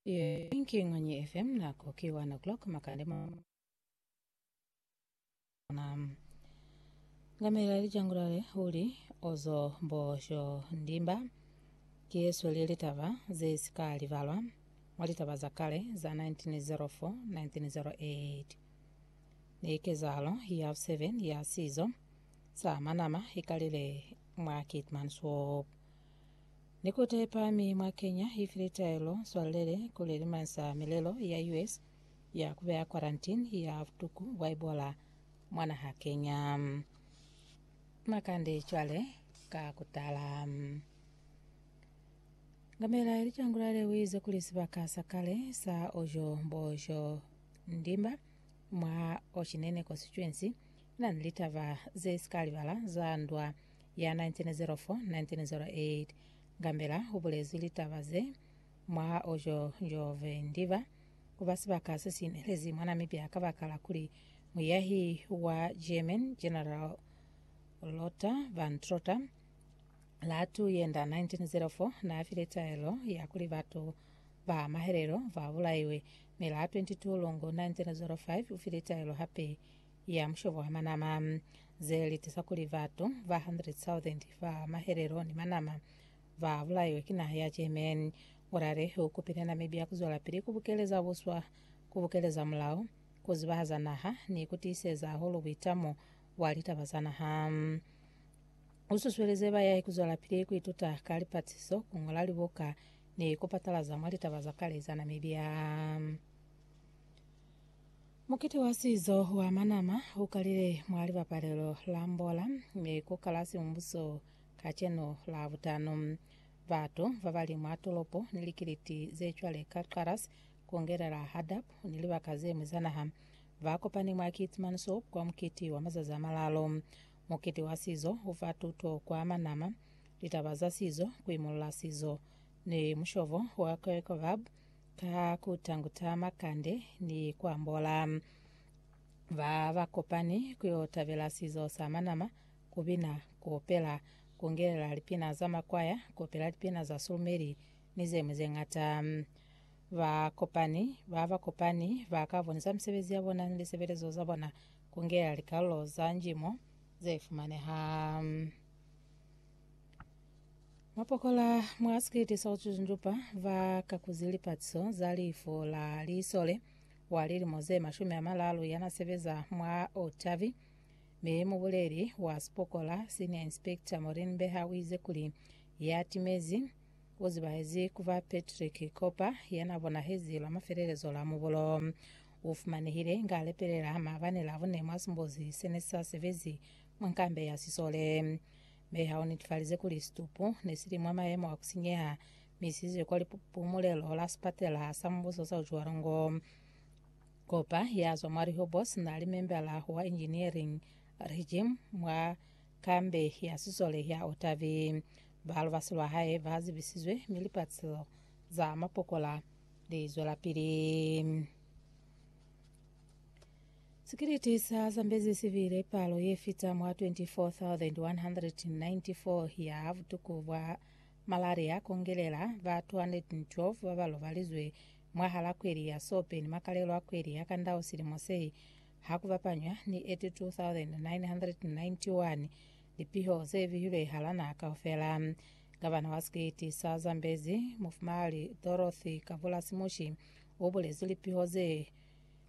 Inking on your FM nako ki 1 o'clock makande mo na ngamela lijangulale uli ozo mbosho ndimba ki yesu li litaba ze sika libalwa mwa litaba za kale za 1904 1908 ni kezahalo ya 7 ya sizo sa manama ikalile mwa Keetmanshoop Ni kute pa mi mwa kenya ifi litaelo swalele kuli limansa milelo ya US ya kubeya quarantine ya butuku bwa Ebola mwa naha Kenya. Makande cwale ka kutala. Ngamela ilicangulale uize kuli sibaka sa kale sa ojo bojo ndimba mwa Ocinene constituency nani litaba ze sikalibala za ndwa ya 1904-1908. Gambela u bulezwi litaba ze mwaha o jo jo vendiba ku ba sibaka se si inelezi mwa Namibia kabakala kuli muyahi wa German General Lothar von Trotha la tu yenda 1904 na file taelo ya kuli batu ba mahelelo ba bulaiwe, mi la 22 Lungu 1905 ufile taelo hape ya mushobo wa manama, ze li tiza kuli batu ba 100,000 ba mahelelo ni manama ba bulaiwe ki naha ya Germany. Korale u kupile Namibia ku zwelapili ku bukeleza buswa, ku bukeleza mulao, ku zibahaza naha, ni ku tiiseza hahulu buitamo bwa litaba za naha. U susuelize bayai ku zwelapili ku ituta ka lipatiso, ku ñola libuka, ni ku patalaza mwa litaba za kale za Namibia. Mukiti wa sizo wa manama u kalile mwa libapalelo la Mbola mi ku kala Siumbuso kacenu Labutano. Batu ba ba li mwa tolopo ni likiliti ze cwale ka Qaras, ku ngelela Hadab ni libaka ze ñwi za naha, ba kopani mwa Kiit Mansoop kwa mukiti wa mazazi a malalo. Mukiti wa sizo u fa tuto kwa manama, litaba za sizo, ku imulla sizo, ni mushobo wa Qoyqobab ka ku tanguta makande ni ku ambola. Ba ba kopani ku yo tabela sizo sa manama, ku bina, ku opela, ku ngelela lipina za makwaya, ku opela lipina za sulumeli, ni ze ñwi ze ñata. Ba kopani ba ba kopani ba ka bonisa misebezi ya bona ni lisebelezo za bona ku ngelela likalulo za njimo ze fumaneha. Mapokola mwa sikiliti sa kucucuncupa va kakuzi lipatiso za lifu la lisole wa lilimo ze mashumi a malalu yana sebeza mwa Otavi mi mubuleli wa sipokola Senior Inspector Maureen Beha u ize kuli ya timezi u zibahezi kuba Patrick Kopa yana bonahezi lwa mafelelezo la mubulo u fumanehile inga alepelela maabane la bune mwa simbuzi sene sa sebezi mwa nkambe ya sisole. Mi ha u netifalize kuli situpu ne si li mwa mayemo a ku sinyeha, mi si izwe kwa lipumulelo la sipatela sa Mubuso sa Ujualongo. Kopa ya zwa mwa Rehoboth na li membala wa Engineering Regime mwa kambe ya sisole ya Otavi. Ba lubasi lwa hae ba zibisizwe, mi lipatselo za mapokola li zwelapili. Sikiliti sa zambezi si bile palo ye fita mwa 24,194 ya butuku bwa malaria kongelela ba 212 ba ba lobalizwe mwahala kweli ya Sope ni makalelo a kweli ya Kandau silimo se, ha ku bapanywa ni 82,991 lipiho ze bihilwe hala naha kaufela. Gavana wa sikiliti sa zambezi, Mufumahali Dorothy Kabula Simushi, u bulezi lipiho ze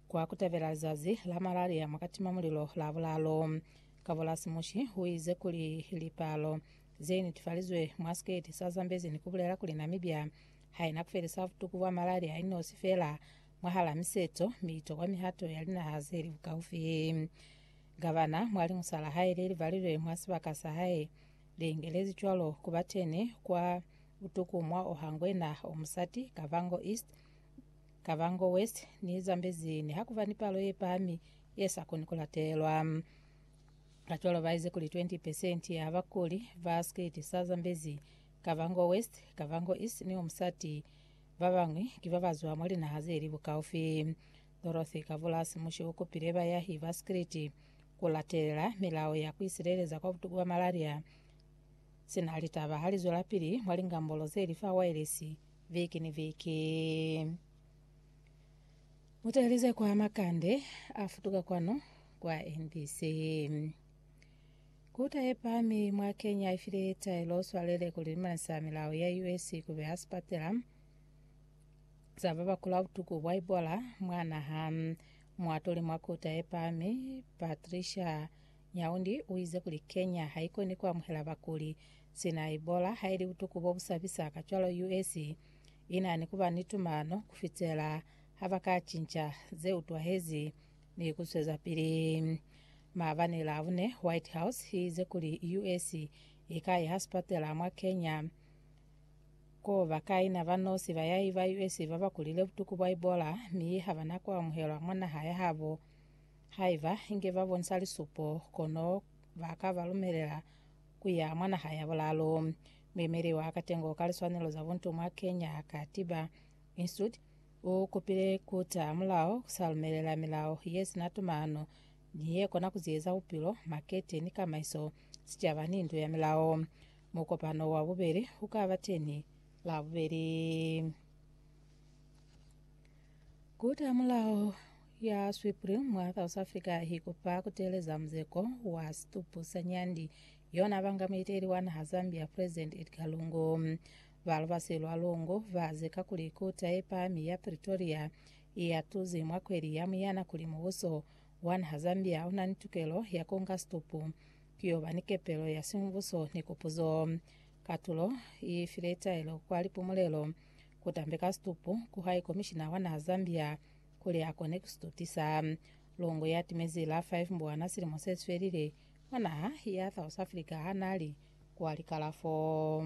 Kwa kutebela lizazi la malaria mwa katima mulilo la bulalo, Kabolasi Mushi uize kuli lipalo zeinitufalizwe mwa siketi sa Zambezi nikubulela kuli Namibia haina kufelisa butuku bwa malaria inosi feela mwahala miseto miitokwa mihato ya linaha zeli bukaufi. Gavana mwa liñusa lahae lelibalilwe mwa sibaka sahae liingelezi cwalo kubateni kwa butuku mwa oha ngwena omusati Kavango East Kavango West ni Zambezi nihakuba ni palo yepahami yesakoni kulatelwa. Kacwalo baize kuli 20 percent ya bakuli ba sikiti sa Zambezi, Kavango West, Kavango East ni Umsati babañwi ki babazwa mwa linaha zeli bukaufi. Dorothy Kavulasi Mushi ukupile bayahi ba sikiti kulatelela milao ya kuisileleza kwa butuku bwa malaria. Sina litaba halizwelapili mwa lingambolo zeli fa waelesi, veke ni veke. Mutahelize kwa makande a futuka kwanu kwa NBC. Kuta ye pami mwa Kenya ifile taelo swalele kuli limansa milao ya US kube ha sipatela za ba bakula butuku bwa Ebola mwa naha. Muatuli mwa kuta ye pami Patricia Nyaundi uize kuli Kenya haikoni kuamuhela bakuli Sina Ebola ha ili butuku bo bu sabisa kacwalo US i na ni ku ba ni tumano ku fitela ha ba ka cinca ze utwahezi ni ku zwezapili. Maabani Labune, White House i ize kuli US i ka yeha sipatela mwa Kenya ko ba ka ina ba nosi bayahi ba US ba ba kulile butuku bwa Ebola mi ha ba na ku amuhelwa mwa naha ya habo. Haiba inge ba bonisa lisupo, kono ba ka ba lumelela ku ya mwa naha ya bulaalu. Muyemeli wa katengo ka liswanelo za buntu mwa Kenya, Katiba Institute, u kupile ku taha mulao ku sa lumelela milao ye si na tumano ni ye kona ku ziyeza bupilo, makete ni kamaiso, sicaba ni ndu ya milao. Mukopano wa bubeli u ka ba teñi Labubeli. Ku taha mulao. ya Swipri mwa South Africa hi kupa ku teeleza muzeko wa situpu sa nyandi yona banga muiteli wa naha Zambia President Edgar Lungu. Ba lubasi lwa Lungu ba zeka kuli kuta ye pami ya Pretoria i ya tuzi mwa kweli ya Muyana kuli mubuso wa naha Zambia una ni tukelo ya kunga situpu ki yo ba ni kepelo ya simubuso ni kupuzo. Katulo i file taelo kwa lipumulelo ku tambeka situpu, ku hai komishina wa naha Zambia Kuli a kone ku si tutisa. Longo ya timezi la five mbwana silimo se si felile, mwa naha ya South Africa ha n'a li kwa likalafo.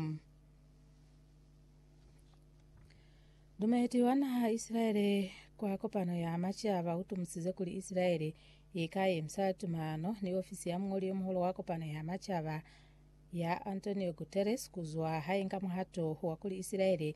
Dumeti wa naha Isilaele kwa kopano ya macaba u tumusize kuli Isilaele i ka yemisa tumano ni ofisi ya muñoli yo muhulu wa kopano ya macaba ya Antonio Guterres ku zwa ha inga muhato wa kuli Isilaele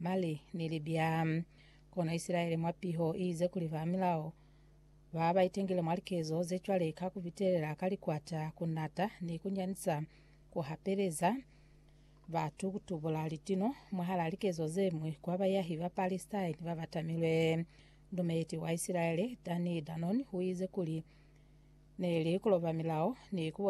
Mali, Nili bya kona Isilaele mwa piho iize kuli ba milao ba ba itengile mwa likezo ze cwale ka ku bitelela ka likwata, ku nata, ni ku nyanisa, ku hapeleza batu ku tubula litino. Mwahal'a likezo ze ñwi, kwa bayahi ba Palestine ba ba tamilwe, Lumeleti wa Isilaele, Danny Danon, u ize kuli, Ne li ku loba milao ni ku